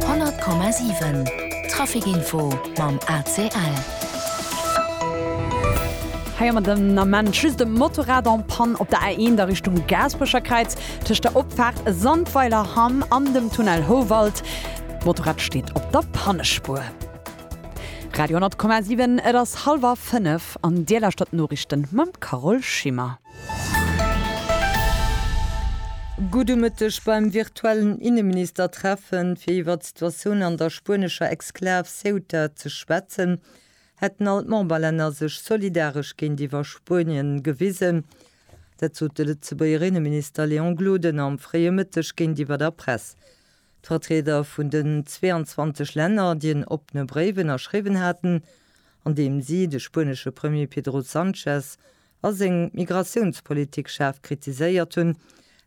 100,7 Traficinfo mam ACL. Hei hu mer den Ament just e Motorrad en Panne op der A1 a Richtung Gaasperecherkräiz, tëscht der Opfaart Sandweiler Hamm an dem Tunnel Houwald. D'Motorrad steet op der Pannespuer. Radio 10,7 Et ass hallwer fënnef an Dir lauschtert d'Noriichten mam Carole Schimmer. Gudde Mëtteg. Beim virtuellen Inneministertreffen, fir iwwert d'Situatioun an der spuenescher Exklav Ceuta ze schwätzen, hätten all d'Memberlänner sech solidaresch géintiwwer Spuenien gewisen. Dat sot de Lëtzebuerger Inneminister Léon Gloden am fréie Mëtteg géintiwwer der Press. D'Vertrieder vun den 22 Länner, déi en oppene Bréif ënnerschriwwen haten, an deem si de spuenesche Premier Pedro Sanchez a seng Migratiounspolitik schaarf kritiséiert hunn,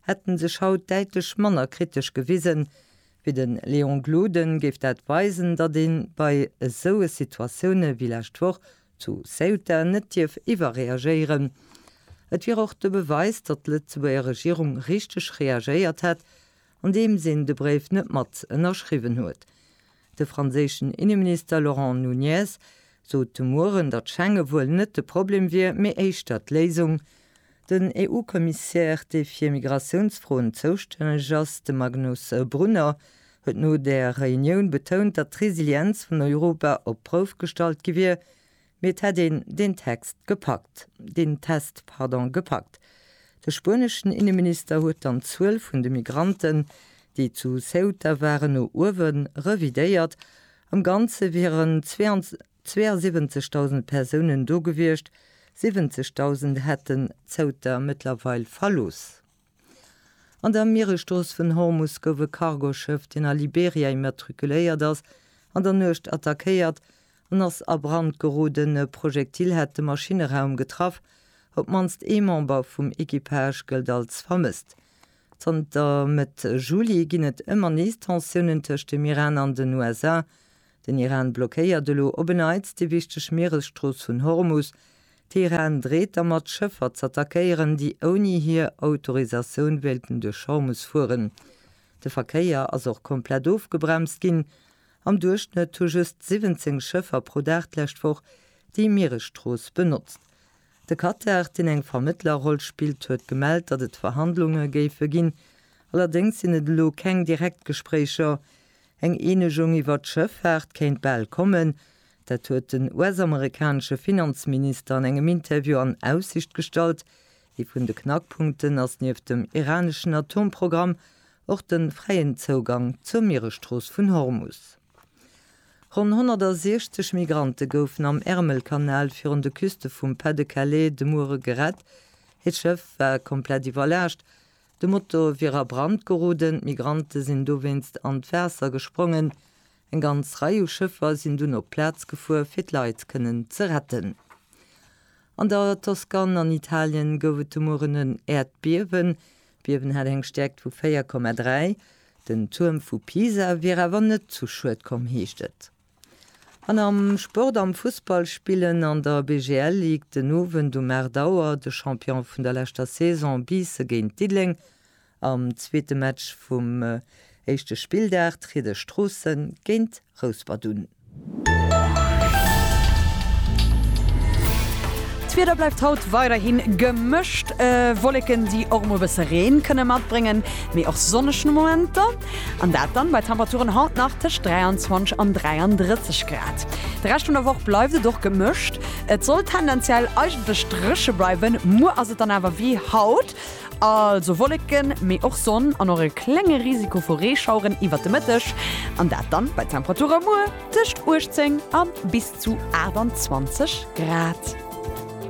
hätte sech haut däitlech manner kritesch gewisen, wéi de Léon Gloden, géif dat weisen, datt ee bei esou Situatioune wéi lescht Woch zu Ceuta net dierf iwwerreagéieren. Et wier och de Beweis, datt d'Lëtzebuerger Regierung richteg reagéiert hätt, andeems een de Bréif net mat ënnerschriwwen huet. De franséischen Inneminister Laurent Nunez sot de Mueren, datt Schengen wuel net de Problem wier, mee éischter d'Léisung. Den EU-Kommissär, dee fir Migratiounsfroen zoustänneg ass, de Magnus Brunner, huet no där Reunioun betount, datt d'Resilienz vun Europa op d'Prouf gestallt gi wier, Mee et hätt een deen Text gepackt, deen Test, pardon, gepackt. De spueneschen Inneminister huet dann d'Zuel vun de Migranten, déi zu Ceuta waren, no uewe revidéiert. Am Ganze wieren 72.000 Persounen do gewiescht, 70.000 hätten Ceuta mëttlerweil verlooss. An der Mieresstrooss vun Hormus gouf e Cargoschëff, deen a Liberia immatrikuléiert ass, an der Nuecht attackéiert an ass a Brand geroden. E Projektil hat de Maschinneraum getraff. Op d'mannst ee Member vum Equipage gëllt als vermësst. Zanter Mëtt Juli ginn et ëmmer nees Tensiounen tëscht dem Iran an den USA. Den Iran blockéiert elo op en Neits déi wichteg Mieresstrooss vun Hormus. Teheran dreet dermat, Schëffer z'attackéieren, déi ouni hir Autorisatioun wéilten duerch Hormus fueren. De Verkéier ass och komplett ofgebremst ginn. Am Duerchschnëtt hu just 17 Schëffer pro Dag d'lescht Woch déi Mieresstrooss benotzt. De Katar, deen eng Vermëttlerroll spillt, huet gemellt, datt et Verhandlunge géife ginn. Allerdéngs sinn et elo keng direkt Gespréicher. Eng Eenegung iwwert d'Schëffaart kéint bal kommen. Dat huet den US-amerikanesche Finanzminister an engem Interview an Aussicht gestallt. Ee vun de Knackpunkten ass nieft dem iraneschen Atomprogramm och de fräien Zougang zur Mieresstrooss vun Hormus. Ronn 160 Migrante goufen am Ärmelkanal virun de Küste vum Pas-de-Calais de Muere gerett. Hiert Schëff war komplett iwwerlaascht. De Motor wier a Brand geroden, d'Migrante sinn dowéinst an d'Waasser gesprongen. Eng ganz Rei u Schëffer sinn dunn op d'Plaz gefuer, fir d'Leit kënnen ze retten. An der Toskan an Italien gouf et de Mueren en Äerdbiewen. D'Biewen hat eng Stäerkt vu 4,3. Den Tuerm vu Pisa wier awer net zu Schued komm, heescht et. An am Sport, am Fussball spillen an der BGL Ligue den Owend um 8 Auer de Champion vun der leschter Saison Biisse géint Diddeleng. Am zweete Match vum éischte Spilldag tritt Esch Stroossen géint Rouspert un. D'Wieder bleift haut weiderhin gemëscht, Wolleken déi och mol bësse Reen kënne matbréngen, mee och sonneg Momenter. An dat dann bei Temperaturen haut nach tëscht 23 an 33 Grad. De Rescht vun der Woch bleift et och gemëscht. Et soll tendenziell eigentlech dréche bleiwen, muer ass et dann awer wéi haut, also Wolleken, mee och Sonn an och e klenge Risiko vu Reeschaueren iwwert de Mëtteg. An dat dann bei Temperature muer tëscht 18 a bis zu 28 Grad.